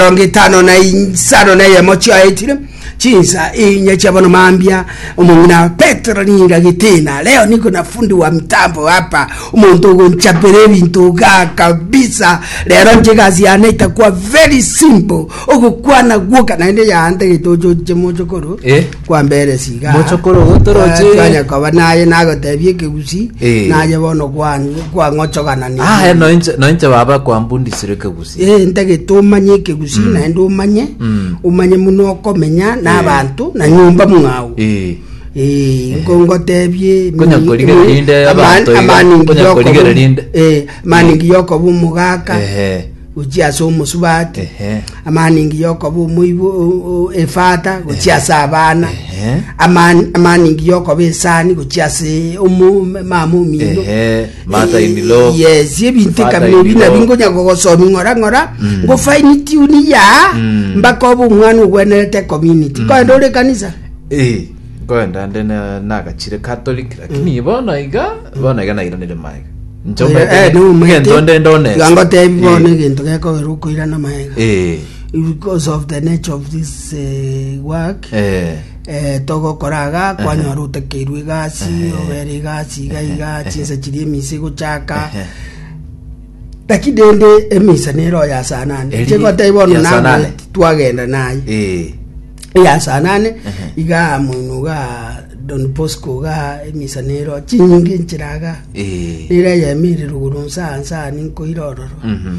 Emerongo etano na insano na eyemo chiaetire chinsa inye chia bono mambia omong'ina petero ninga gitina leo niko na fundi wa mtambo hapa omonto ogonchapera ebinto ga kabisa rero nche gasi yane itakwa very simple ogokwana gwoka naende yaante getochoche mochokoro Eh. kwambere siga Mochokoro gotoroche. twanya koba naye nagotebia ekegusi Eh. naye bono kwan- kwang'ochoganania Ah, eh, noinche noinche baba kwambundisire kegusi Eh, ntagete omanye ekegusii mm. naende omanye mm. omanye muno okomenya eh. n'abanto na nyomba mwao eh. ngotebie amaningi yokoba omogaka gochia ase omosubati amaningi yokoba omoibo efata gochia ase abana amaningi yokoba esani gochia ase mama omino Martha in law. yes ebinto Father ekabila in ebi law. nabi ngonya gogosomi ng'ora ng'ora ngo fine tune ya mpaka obe omwana ogwenerete community koenda ore kanisa Eh, koenda nde na- nagachire catholic lakini bono iga bono iga nairanire maega Eh, no, maete. ngento nde ndonesa Iga ngotebi bono egento gekogerwa okoirana maega Eh, because of the nature of this eh, work eh. Togokora iga, kwanyora otakeirwe egasi, obere egasi iga iga, chinsa chiria emisa egochaka. Lakini rende emisa nere oyasanane. Eri- Chegoteba bono yasanane. nangwe twagenda naye. Eh, eyasanane iga moino ga don bosco ga emisa nero chinyinge nchiraga eh, nera yemere ruguru nsa nsa ninkoira ororo mhm.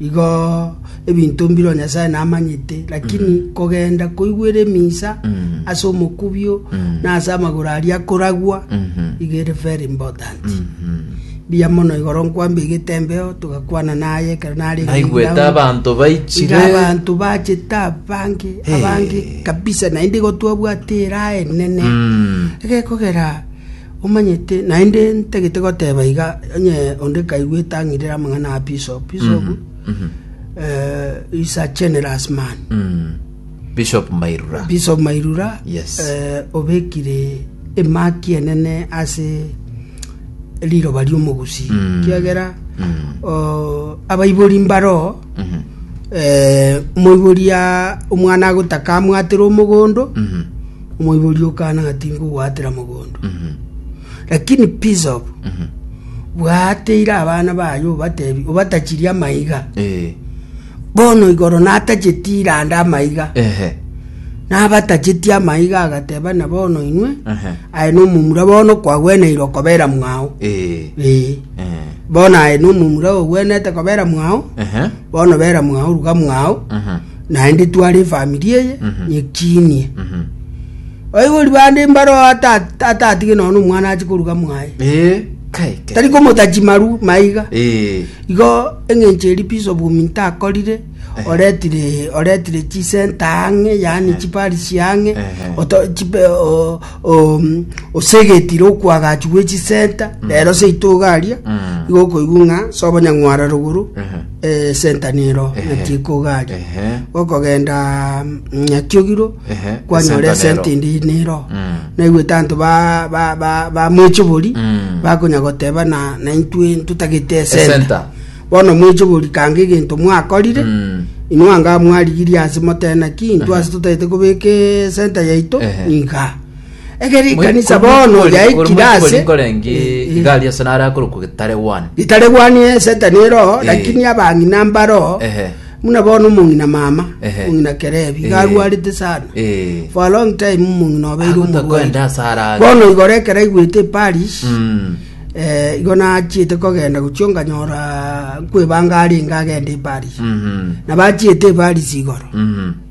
Igo ebinto mbireo Nyasae namanyete, lakini kogenda koigwera emisa ase omokubio na ase amagoro aria akoragwa, igo ere very important. Mbuya mono igoro nkwambia egetembeo, togakwana naye ekero narenge naigwete ground. abanto Iga baichire abanto bachete abange Hey. abange kabisa naende igo twabwate eraha enene Mm. egekogera Omanyete, naende ntagete goteba iga, onye onde kaigwete ang'irere amang'ana a bishop, bishop eh, is a generous man. Mm. Bishop Mairura. Bishop Mairura Yes. eh, obekire emaki enene ase riroba riomogusi Mm. kiagera Mm. oh, abaibori mbaro Mhm. eh, moibori ya omwana agotaka amwatire omogondo Mhm. Omoibori o Kana ngatinka ogwaatera mogondo, lakini Pisob, bwaateire abana baye obatebi, obatachirie amaiga. Eh. Bono igoro natachetie iranda amaiga, Ehe. nabatachetie amaiga, agateba na bono inwe, Ehe. aye nomomura bono kwagweneire okobera mwao. Eh. Eh. Eh. Bono aye nomomura ogwenete kobera mwao, Ehe. bono bera mwao ruga mwao, Ehe. Naende tware efamiri eye nyechinie. Oigori bande mbaro ata- atatige nono omwana ache koruga mwaye. Eh, kai, kai. Tari komota chimaru maiga. Eh, Igo eng'encho eri peace of women takorire oretire oretire chisenta ang'e yaani chiparisi ang'e Ehe. oto- chipe- o- o- mm, osegetire okwagachu gwe chisenta rero seito iga aria Mm. igo okoigwa ng'a sobo nyang'wara rogoro Ehe. esentanero Ehe. ng'a tikogaaria Ehe. gokogenda nyatiogiro Ehe, kwanyora esentanero. esenti ndi nero Mm. naigwete anto ba- ba- ba- bamwechobori Mm. bakonya goteba na naintwe ntotagete Esenta. esenta bono mwechobori kanga egento mwakorire Mm. inwe anga mwarigirie ase motena ki intwe ase totagete kobeka esenta yaito Ehe. iga Ekero ekanisa bono yaikire ase nkorenge Eh, iga aria ase nare akorokwa getaregwani itaregwani esetani ero Eh. lakini abang'ina mbaro Ehe. muna bono omong'ina mama Ehe. omong'ina kerebi Eh. garwarete sana Eh. for a long time omong'ina obeire Agotakwenda omorwaire ase arage. bono igoro ekero aigwete eparish Mm. eh, igo nachiete kogenda gochio nganyora nkwebanga arenge agende eparish Mhm. na bachiete eparish igoro Mhm.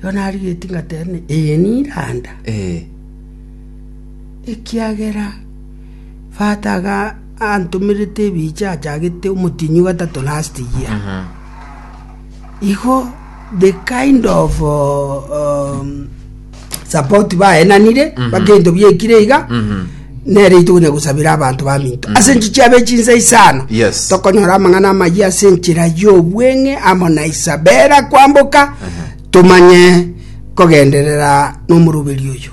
Igo narigetie ngateebania, Ee, niranda, ekiagera Fata iga antomerete ebiche achagete omotienyi o gatato, last year. Igo the kind of um, support baenanire mpaka ebinto biekire iga nere itogo na gosabera abanto baminto ase enchichi chiabe chinsa isano Yes. tokonyora amang'ana amayia ase enchera y'obweng'e amo na isabera kwamboka tomanye kogenderera n'omoroberi oyo